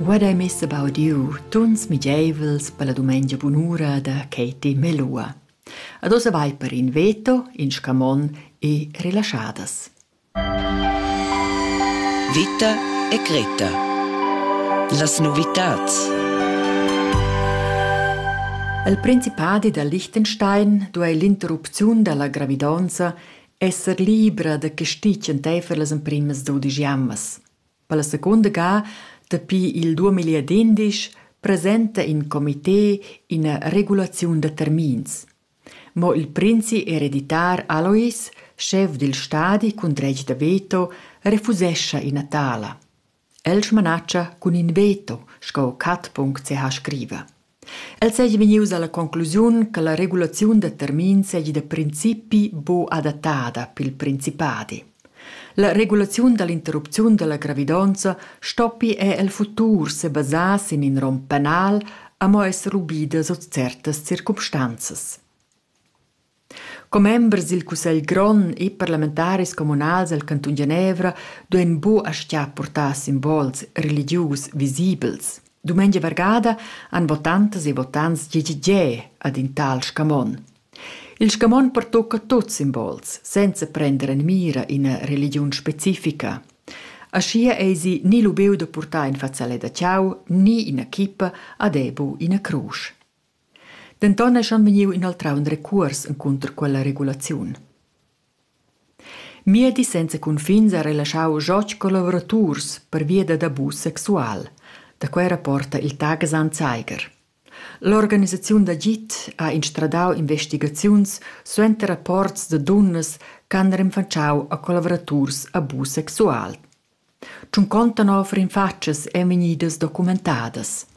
Vad ei mess a baudiu tuns migeivels per la dumengia bunura da Katie Melua. Ad ossa vai per in veto, in scamon e rilaschadas. Vita e Greta. Las novitats. Al Principadi da Liechtenstein duei l'interrupziun dalla gravidonza esser libra da castig enteifer las emprimas dudisch jammas. Per la secunda ga, dapi il 2011, presenta in comité ina regulaziun da termins. Mo il princi ereditar Alois, chef dil stadi cun dretg da veto, refusescha ina tala. El smanatscha cun in veto, sco Cat.ch seha scriva. El seigi vegnius alla conclusiun che la regulaziun da termins seigi da principi buc adattada pil principadi. La regulaziun dall'interrupziun dalla gravidonza stoppi er el futur sebasar sin in rom penal, amo esser ubida sut certas circumstanzas. Commembers dil cussegl grond e parlamentaris communals el cantun Genevra duein buca aschia purtar simbols religius visibels. Dumengia vargada han votantas e votants gi gi ge ad in tal scamon. Il scamon pertucca tuts simbols, senza prender en mira ina religiun specifica. Aschia eisi ni lubiu da purtar in fazzalet da tgau ni ina chippa ad ebu ina crusch. Denton eschan vegniu inoltrau in recuors encunter quella regulaziun. Miedi senza cunfins ha relaschau Jotg co lavoraturs pervia dad abus sexual. Da quei rapporta il Tagesan Zeiger. L'organisaziun d'agid ha instradau investigaziuns suenter rapports da dunnas ch'han renfatschau a collavuraturs abus sexual. Tschunconta nov rinfatschas ein vegnidas documentadas.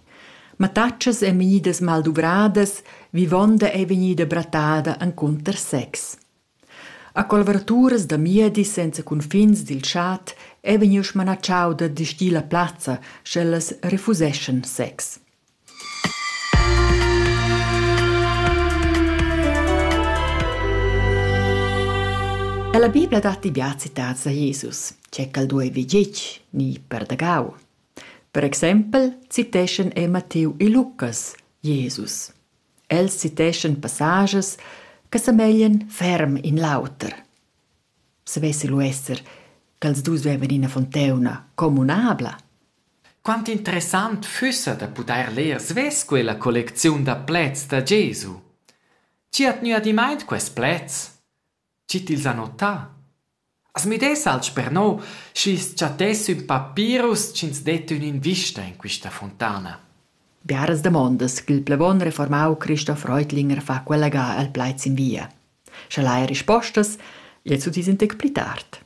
Mattatschas ein vegnidas malduvradas, vivonda ei vegnida brattada encunter sex. A colverturas da miedi senza cunfins dil chat ei vegniu smanatschau da distir la plazza, sch'ellas refuseschan sex. La Bibla dat bia citads a Jesus, che quel duei vegetg ni perdagau. Per exempel citeschan el Matteu e Lucas Jesus. Els citeschan passages che semeglien ferm in l'auter. savessi lu esser ch'els dus vevan ina fontauna communabla. Quant interessant fussa da pudair leer svess quella collecziun da pleds da Gesu. Chi hat gnü adimaint quest pleds? Chi t'ils ha notà? As müdess alch per no, schi's chattess ün papirus chi'ns det ün'invista in quista fontana. Biaras damondas ch'il plevon reformau Christoph Reutlinger fa quella ga al plaids in via. Scha l'hai rispostas, il sutis in tec pli tard.